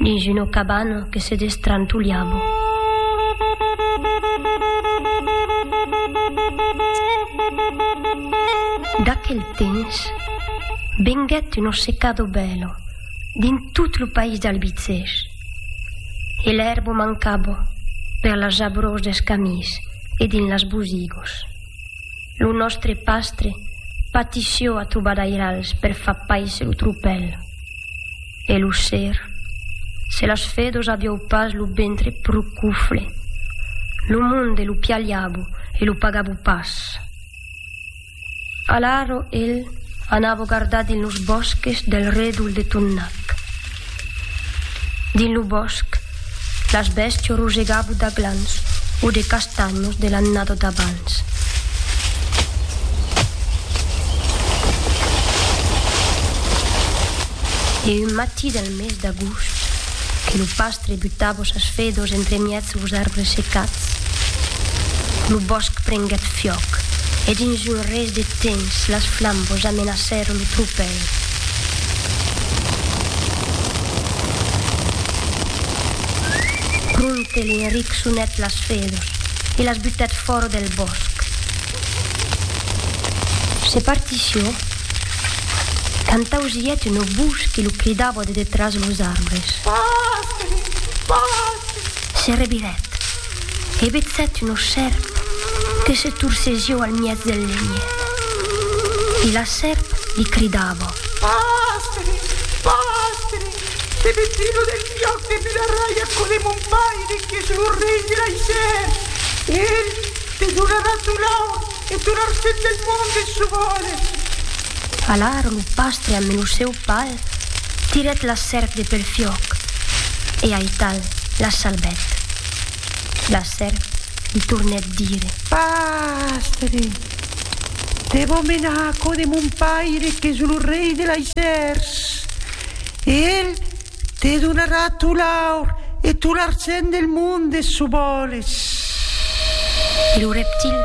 Dins una cabana que se destrantolhava. D'aquel temps venguèt una secada bèla dins tot lo país d'Albicèrs e l'èrba mancava per las jabrós dels camins e dins las bosigos. Lo nòstre pastre patissió a trobadairals per far pais lo tropèl. E lo ser, se las fedos aviou pas lo ventre pro cufle, lo monde lo pialhabo e lo pagabo pas. Alaro el anavo gardar dins los bòsques del redol de Tonnac. Dins lo bòsc, Las bèstia rogegava d'aglans o de castanhos de l'annada d'abans. E un matí del mes d'agost, que lo pastre butava sas fedos entremièg los arbres secats, lo bòsc prenguèt fiòc e dins un res de temps las flambas amenacèron lo tropèl. Prompte l'Enric sonèt las fedus e las butèt fòra del bòsc. Se partició quand ausièt una votz que lo cridava de detràs los arbres. Pòstre! Pòstre! Se revirèt. He vetzèt una sèrp que se torcezió al miètz del lenhet. E la sèrp li cridava. Pastre! Pastre! Te veti lo del fiòc de Bularrai aquò de mon paire qu'es lo rei de l'Aisèr. Ell te donarà ton aur. E tot l'argent del monde se vòles. Alara lo pastre ambe lo seu pal tirèt la sèrp de pel fiòc e aital la salbèt. La sèrp li tornèt dire. Pastre, te vò menar a cò de mon paire qu'es lo rei de laissèrs e el Te donarà tot l'aur e tot l'argent del monde s'o vòles. E lo reptil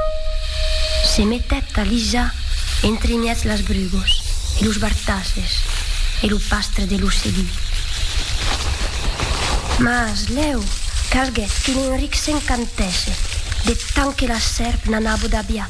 se metèt a lisar entre mièg las brugos e los bartasses e lo pastre de l'ocelí. Mas lèu calguèt qu'un enric s'encantèsse de tant que la sèrp n'anava d'aviat.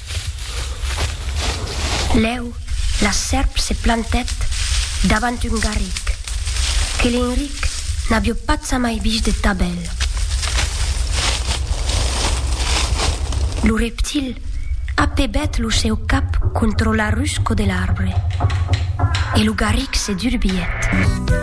Lèu, la sèrp se plantèt davant un garric, que l'Enric n'avió patzamai vist de ta bèl. Lo reptil apebèt lo seu cap contra la rusco de l'arbre, e lo garric se durbièt.